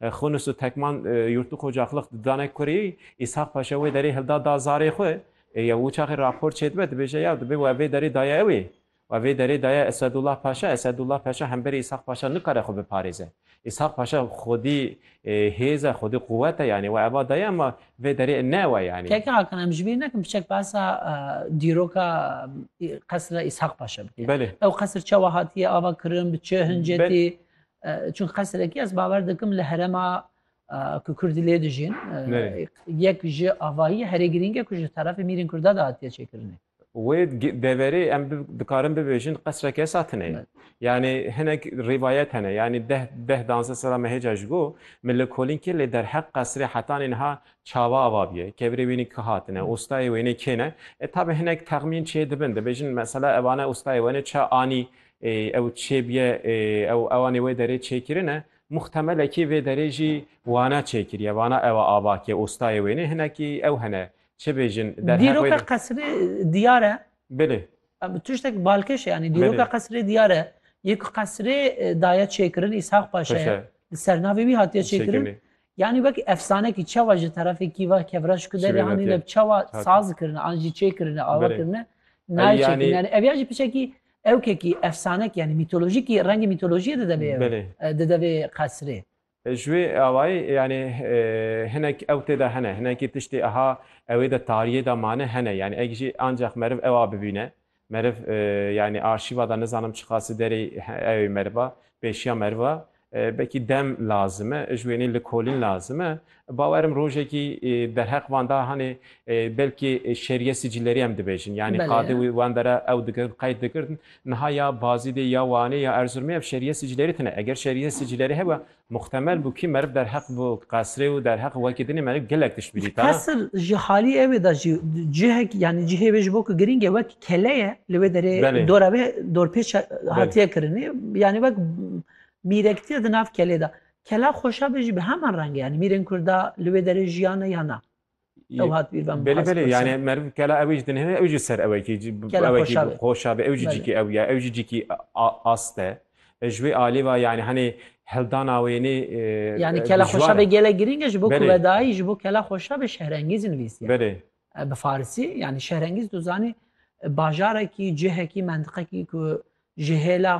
Xûnis û Tekman Yûrtû Qocaxlix didane kurî, Îshak Paşa wê derî hilda da zarê xwe. Yew wiçaxê rapor çêdibe, dibêje ya dibê we vê derî daye ew ê. We vê derê daye Esedullah Paşa, Esedullah Paşa hemberî Îshak Paşa nikare xwe biparêze. Îshak Paşa xwedî hêz e, xwedî quwet e yanî we eva daye ema vê derê ne ew e yanî. Keke Hakan em ji bîr nekin biçek behsa dîroka qesra Îshak Paşa bike. Belê. Ew qesr çawa hatiye ava kirin, bi çi hincetî? Çun qesrekî ez bawer dikim li herema ku Kurdî lê dijîn yek ji avahî herê girîng e ku ji terefê mîrên Kurda de hatiye çêkirinê. Wê deverê em dikarin bibêjin qesrek esa tine ye. Yanî hinek rîvayet hene yanî deh deh danze sala me hêca ji bo min li kolînkê lê derheq qesrê hetanê niha çawa ava biye, kevirê wênî ki hatine, ostayê wênê kê ne. E tabe hinek texmîn çê dibin dibêjin mesela evane ostayê wenê çi anî Ew çê biye ew ewanê wê derê çêkirine. Muxtemelekî vê derê jî wana çêkiriye. Wana ewa ava ke ostayê wênê hinekî ew hene. Çi bêjin der heq wêne. Dîroka qesrê diyar e. Bilê. Tiştek balkêş e yanî. Dîroka qesrê diyar e. Yê ku qesrê daye çêkirin Îshaq Paşa ye. Li ser navê wî hatiye çêkirin. Yanî wek efsanekî çawa ji terefê kîva kevreş ku derê anîne çawa saz kirine an jî çêkirine ava kirine nayê çêkirine. Yanî ev ya jî piçekî Ewkekî efsanekî yanî mîtolojîkî rengê mîtolojîyê dide vê Belê. dide vê qesrê. Ji wê awayî yanî hinek ew tê de hene, hinekî tiştê eha ewê de tarîyê de mane hene. Yanî eg jî ancax meriv ewa bibîne. Meriv yanî arşîva de nizanim çiqasi derê ewê meriva, pêşiya meriva Belkî dem lazim e, ji wênê likolîn lazim e. Bawer im rojekî derheq van da hanê belkî şerîye sicîlerî em dibêjin. Yanî qadê wî wan dera ew digirin, qeyd digirin. Niha ya Bazîdê ya Wanê ya Erziromê ev şerîye sicîlerî tine. Eger şerîye sicîlerî hebe muxtemel bû kî meriv derheq bi qesrê û derheq wekî dinê meriv gelek tişt bidîta. Qesr ji halî ew ê de jî cihek yanî cihê wê ji bo ku girîng e wek Kele ye li wê derê Belê. dora wê dorpêça hatiye kirinê yanî wek mîrektîye di nav kelê de. Kela xweşa be jî bi heman rengê yanî mîrên kurda li wê derê jiyane ya na. Ew hat bîr ben Belê belê yani meriv kela ew jî di nihêne ew jî ser ew ekî cî Kela ew ekî xweşa be. xweşa be ew jî Belê. cîkî ew ya ew jî cîkî a- ast e. E, Ji wê alî ve yani henê hildana wê nê e, Yani e, kela dijwar xweşa e. be gelek girîng e ji bo Belê. kuvedayî ji bo kela xweşa be şehrengîz nivîsiye. Belê. Bi farisî yanî şehrengîz tu zanî bajarekî, cihekî, mentiqekî ku ji hêla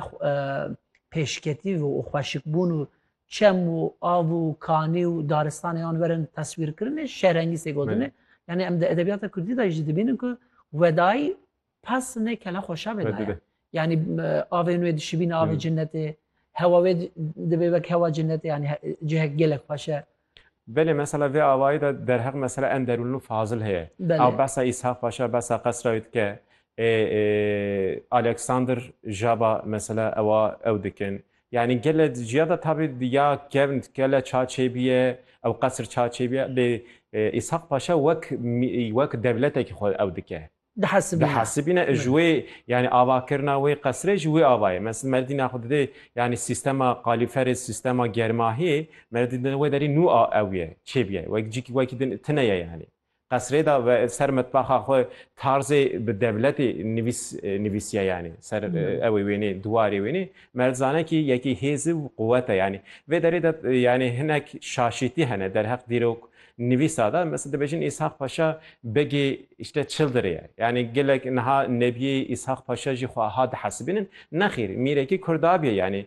pêşketî û xweşikbûn û çem û av û kanî û daristanê yan werin teswîrkirinê şehrengîzê gotinê. Yanî em di edebiyata kurdî de jî dibînin ku wedayî Pes nê kele xweşa be daya. Yanî avên wê dişibîne avê cinnetê, hewa wê dibê wek hewa cinnetê yanî cihek gelek xweş e. Belê mesela vê avayî de derheq mesela en derûnlu fazil heye. Ew behsa Îsha xweş e, behsa qesra wê dike. Alexander Jaba mesela ewa ew dikin. Yanî gele ciya de tabî ya kevn gele ça çêbîye, ew qesr ça çêbîye lê Îshaq Paşa wek wek dewletekî xwe ew dike. dihesibîne. Dihesibîne ji wê yanî avakirina wê qesirê ji wê avayê. Mesil Meredî naxwe didê yanî sîstema qalîferê, sîstema germahiyê Meredî didê wê derî nû a ew ye, çê bîye. Wek cîkî wekî din tine ye yanî. Qesirê de ve ser mitbaxa xwe tarzê bi dewletê nivîs nivîsiye yanî. Ser ewê wênê, diwarê wênê. Mered zane kî yekî hêzi û quwete yanî. Vê derê de yanî hinek şaşîtî hene derheq dîrok Nivîsa de mesela dibêjin Îshak Paşa begê îşte çildirê ye. Yanî gelek niha nebiyê Îshak Paşa jî xwe ha dihesibînin. Nexîr, mîrekî Kurd abiye yanî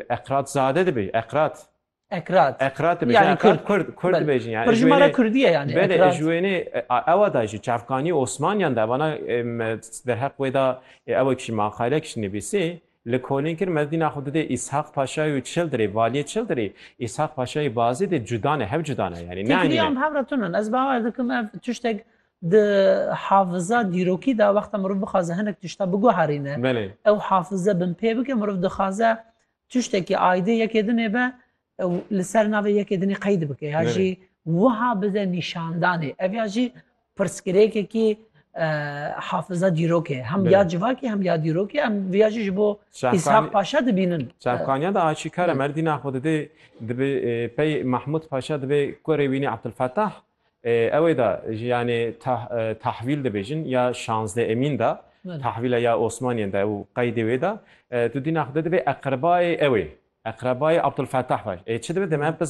Eqratzade dibêjin. Eqrat. Eqrat. Eqrat dibêjin. Yanî Kurd. Kurd, Kurd dibêjin yanî. Ji wênê Kurdî ye yanî Eqrat. Belê, ji wênê ewa de jî çavkanî Osmaniyan de vana derheq wê de ew kişî maqalek jî nivîsî. Li Kolîn kir mezlîna xwe didê Îshaq Paşayê û Çildirê, Valiyê Çildirê, Îshaq Paşayê Bazê dê cuda ne, hev cuda ne yanî. Neanîne. Fikrîya em hev re tune ne. Ez bawer dikim ev tiştek di hafiza, dîrokî de wexta mirov bixwaze hinek tişta biguherîne, Belê. ew hafize binpê bike, mirov dixwaze tiştekî aîdê yekê din ê be, Ew li ser navê yekê dinê qeyd bike ya jî wiha bize nîşandanê. Ev ya jî pirsgirêkekî hafiza dîrok e. Hem ya civakî hem ya dîrokê em vê ya jî ji bo Îshak Paşa dibînin. Çavkaniya de aşîkar e merdîna xwe didê dibê pey Mahmûd Paşa dibê kurê wî nê Abdulfetah Ewê da ji yanê tahvîl dibêjin ya şazdeh emîn da, tahvîla ya Osmaniyên da û qeydê wê da tu dîna xwe de divê eqrebayê ewê, eqrebayê Abdulfetah be. Ê çi dibe dê me?